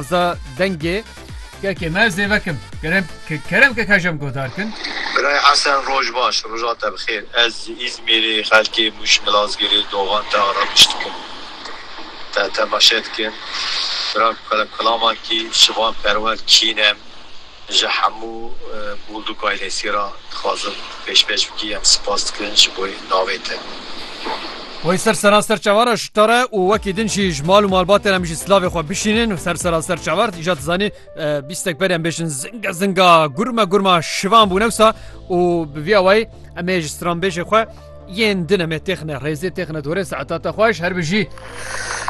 Za dengê kekê me zêvekim. Kerem ke kerem ke kajem godar kin. Birayê Hesen roj baş, roja te bi xêr. Ez ji Îzmîrê xelkê Mûş Milazgirê doxan te arabiş dikim. Te temaşe dikim. Bira kulamakî şivan perwer kîn em. Ji hemû Bûlduk ailesî re dixwazim pêşpêş bikî em sipas dikin ji bo navê te. Wê ser seranser çavar re ji te re û wekî din jî ji mal û malbatê re em jî silavê xwe bişînin ser seranser çavar îja dizanî bîstek berî em bêjin zinga zinga gurma gurma şivan bû newsa û bi vî awayî em ê ji stranbêjê xwe yên din em ê têxine rêzê têxine dorê saeta te xweş her bijî.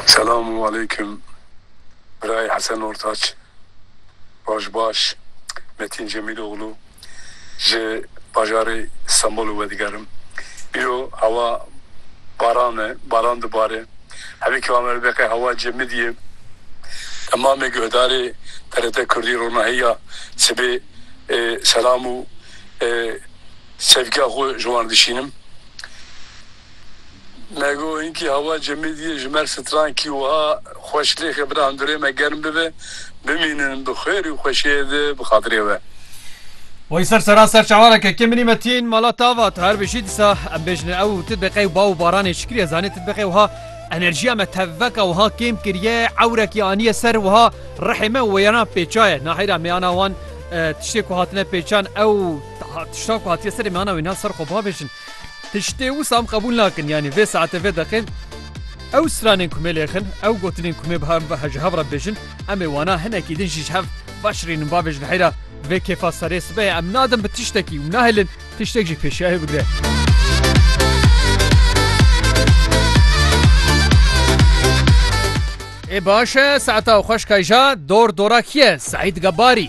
Selam û aleykum birayê Hesen Ortaç. Roj baş, Metîn Cemîloglu ji bajarê Stenbolê wedigerim. Îro hewa baran e, baran dibare. Hevî keva me bibe qey hewa cemidî ye. Temamê guhdarê TRT Kurdî ronahîya sibê selam û sevgiya xwe ji wan dişînim. Lego hinkî hewa cemê dî ye ji mer stran kî wiha xweş lêxe bira hundurê me germ bibe bimînin bi xêr û xweşiyê di bi xatirê we. Wayî ser seran ser çawaneke ke minî me tîn mala tava tu her bijî dîsa em bêjine ew û titbiqê û bav û baranê çi kiriye zanê titbiqê wiha enerjiya me tevveka wiha kêm kiriye ewrekî aniye ser wiha rihê me û wêyana pêçaye nahêra mêyana wan tiştê ku hatine pêçan ew tişta ku hatiye serê mêyana wê niha ser xwe bavêjin. Tiştê wisa em qebûl nakin yanî vê saetê vê deqê ew stranên ku me lê xin ew gotinên ku me biha ji hev re bêjin em ê wana hinekî din jî ji hev veşirînin bavê ji heyra vê kêfa serê sibehê em nadin bi tiştekî û nahêlin tiştek jî pêşiyayê bigre. Ê baş e, saeta xweş kayja, dor dora kî ye, Seîd Gebarî.